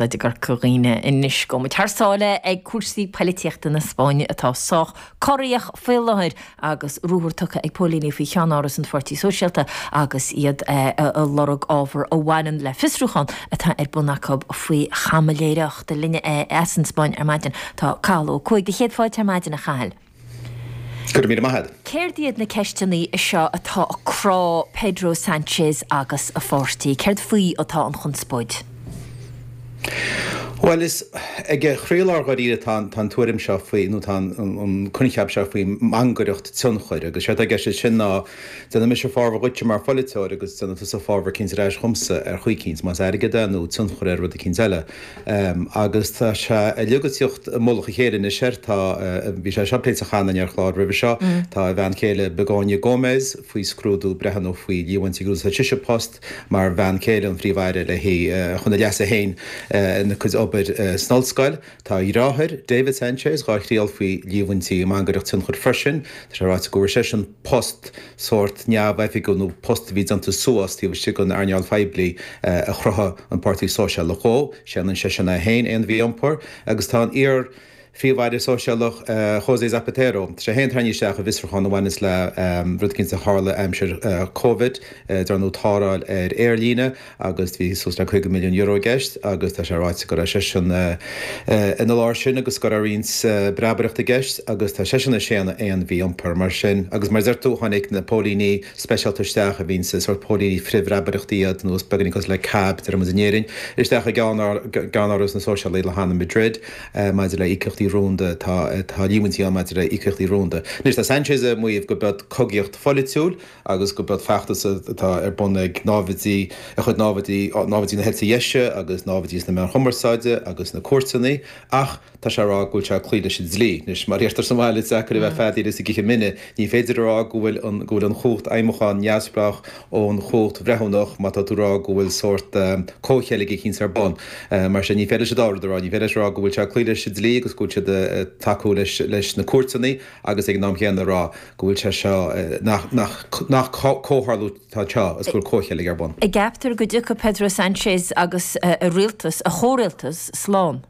A dhaoine, anois gabhfaidh muid thar sáile ag cúrsaí poilitíochta na Spáinne atá sách corraitheach faoi láthair agus ruathar tugtha ag póilíní faoi cheannáras an Pháirtí Sóisialta agus iad ag lorg ábhar a bhaineann le fiosrúchán atá ar bun acu faoi chaimiléireacht. Linne é as an Spáinn ar maidin tá Cathal Ó Cuaig. Do chéad fáilte ar maidin, a Chathail. Go raibh míle maith agat. Céard iad na ceisteannaí seo atá ag crá Pedro Sanchez agus a pháirtí? Céard faoi atá an chonspóid? Bhuel, is ag a chroílár dháiríre atá an tuairim seo faoi, nó tá an coincheap seo faoi mhangaireacht tionchair. Agus séard tá i gceist leis sin ná, déanfaidh mise fábhar dhuitse mar phoiliteoir agus déanfaidh tusa fábhar eicínt ar ais dhomsa ar chaoi eicínt, más airgead é nó tionchar ar rud eicínt eile. Agus tá sé uilig ag tíocht i mullach a chéile anois air. Tá, bhí sé seo pléite cheana in ar chlár roimhe seo, tá a bhean chéile Begoña Gómez faoi scrúdú, breithiúna faoi líomhaintí gur úsáid sise a post mar bhean chéile an Phríomh-Aire le hí, chun a leasa féin ina cuid obair san ollscoil. Tá a dheartháir, David Sánchez, dhá thriail faoi líomhaintí i mangaireacht tionchair freisin. Tá sé ráite go bhfuair seisean. post sórt neamhoifigiúil nó post a bhí déanta suas taobh istigh den earnáil phoiblí a chruthaigh an Páirtí Sóisialach dhó. Séanann seisean é féin aon mhí-iompar agus tá an iar-phríomh-aire sóisialach José Zapatero, sé féin, tarraingthe isteach i bhfiosrúchán a bhaineas le rud eicínt a tharla aimsir Covid, dar ndóigh tarrtháil ar aerlíne, agus bhí suas le €50 milliún i gceist agus tá sé ráite go raibh seisean ina lár sin agus go raibh roinnt breabaireacht i gceist agus tá seisean ag séanadh aon mhí-iompar mar sin agus mar a deir tú tháinig na póilíní speisialta isteach a bhíonns, sórt póilíní frithbhreabaireacht iad nó is beagáinín cosúil le CAB, déarfaidh muid, in Éirinn isteach i gceann ár gceann áras na Sóisialaigh i Madrid maidir le íocaíochtaí rúnda tá tá líomhaintí ann maidir le íocaíochtaí rúnda. Anois tá Sanchez ag maíomh go mba cogaíocht pholaitiúil agus go mba feachtas atá ar bun ag náimhdí de chuid náimhdí, náimhdí na heite deise agus náimhdí sna meáin chumarsáide agus sna cúirteanna, ach tá sé ag rá go bhfuil sé ag cloí leis an dlí. Anois, mar a dheirtear sa mbaile, is deacair a bheith ag feadaíl is ag ithe mine. Ní féidir a rá go bhfuil an, go bhfuil an chumhacht fheidhmiúcháin neamhspleách ón chumhacht bhreithiúnach má tá tú ag rá go bhfuil sórt comhcheilg eicínt ar bun. Mar sin, ní féidir leis an dá rud a rá. Ní féidir leis a rá go bhfuil sé ag cloí leis an dlí agus go bhfuil siad ag tacú leis na cúirteanna agus ag an am chéanna a rá, go bhfuil sé seo, nach comhtharlú atá anseo agus go bhfuil comhcheilg ar bun. An gceaptar go dtiocfaidh Pedro Sanchez agus a rialtas, a chomhrialtas, slán.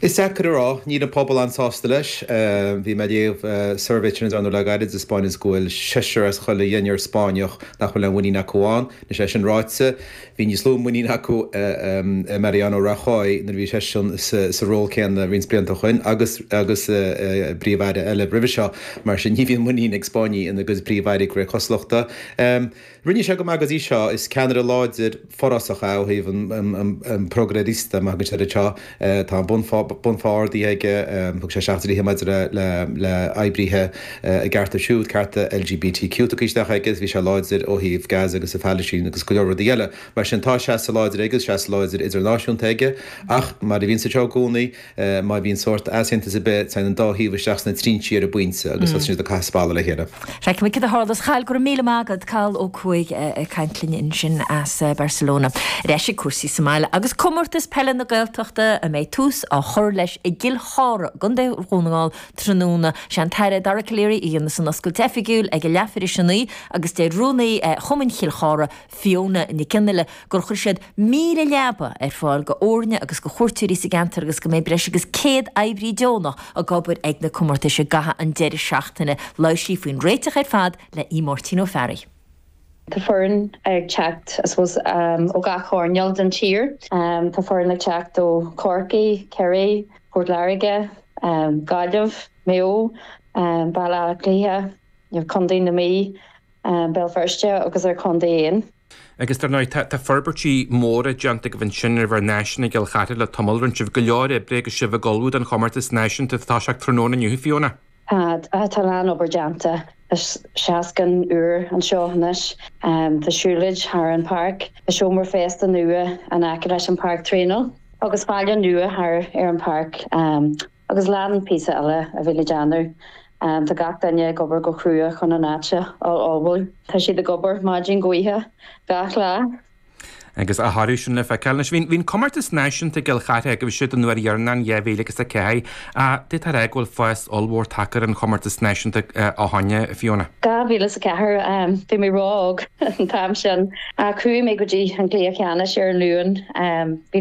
Is deacair a rá. Níl an pobal an-sásta leis. Bhí mé ag léamh suirbhé a rinneadh le gairid sa Spáinn agus go bhfuil seisear as chuile dheichniúr Spáinneach nach bhfuil aon mhuinín acu ann. Anois, é sin ráite, Bhí níos lú muiníne acu i Mariano Rajoy nuair a bhí seisean sa ról céanna roinnt blianta ó shoin agus i bpríomh-aire eile roimhe seo. Mar sin, ní bhíonn muinín ag Spáinnigh ina gcuid príomh-airí go réidh cosnochta. Rinne sé go maith go dtí seo. Is ceannaire láidir, forásach é ó thaobh an progresista, mar a thugann siad air anseo, Tá an bunphá ardaithe aige, thug sé isteach dlíthe maidir le hoibrithe a gcearta siúd, cearta LGBTQ tugtha isteach aige, bhí sé láidir ó thaobh Gaza agus an Phalaistín agus go leor rudaí eile. Mar sin tá seasamh láidir aige agus seasamh láidir idirnáisiúnta aige. Ach mar a bhíonn anseo i gcónaí, má bhíonn sórt easaontas ar bith, téann an dá thaobh isteach sna trinsí ar an bpointe agus tosaíonn siad ag caitheamh spallaí le chéile. Feicfimid cad a tharlas. A Chathail, go raibh míle maith agat Cathal Ó Cuaig ag caint linn ansin as Barcelona. Ar ais ag cúrsaí sa mbaile agus Comórtas Peile na Gaeltachta a mbeidh tús dhá chur leis i gCill Chartha gContae Dhún na nGall tráthnóna. Sé an tAire Dara Calleary a dhéanfas an oscailt oifigiúil ag a leathuair tar éis a naoi agus deir Rúnaí Chumann Chill Chartha, Fiona Nic Fhionnghaile gur chuir siad 1,000 leaba ar fáil go fhoirne agus go chuairteoirí sa gceantar agus go mbeidh breis agus 100 oibrí deonach ag obair ag na comórtais i gcaitheamh an deiridh seachtaine. Labhair sí faoin réiteach ar fad le Máirtín Ó Fearraigh. Tá foireann ag teacht I suppose ó gach choirneál den tír. Tá foireann ag teacht ó Chorcaigh, Ciarraí, Port Láirge, Gaillimh, Maigh Eo, Baile Átha Cliath, agus Condae na Mí, Béal Feirste agus ár gcontae féin. Agus dar ndóigh, tá forbairtí móra déanta agaibh ansin ar bhur n-áiseanna i gCill Chartha le tamall rinne sibh, go leor oibre agus sibh ag ullmhú don chomórtas náisiúnta atá ag toiseacht tráthnóna inniu, Fiona. Tá, tá lán obair déanta. Tá seastán úr anseo anois. Tá siúlóid thar an páirc. Tá seomra feistis nua in aice leis an páirc traenála agus balla nua thar ar an páirc. Agus lán píosaí eile a bhí le déanamh, Tá gach duine ag obair go crua chun an áit a ullmhú. Tá siad ag obair maidin go hoíche gach lá. Agus a thoradh sin le feiceáil. Anois, bhí an comórtas náisiúnta i gCill Chartha agaibhse an uair dheireanach in 2004, ach d'fhéadfá a rá go bhfuil fás ollmhór tagtha ar an chomórtas náisiúnta ó shin, Fiona. Dhá mhíle is a ceathair. Bhí mé ró-óg an t-am sin, ach chuaigh mé go dtí an gcluiche ceannais ar an Luan. Bhí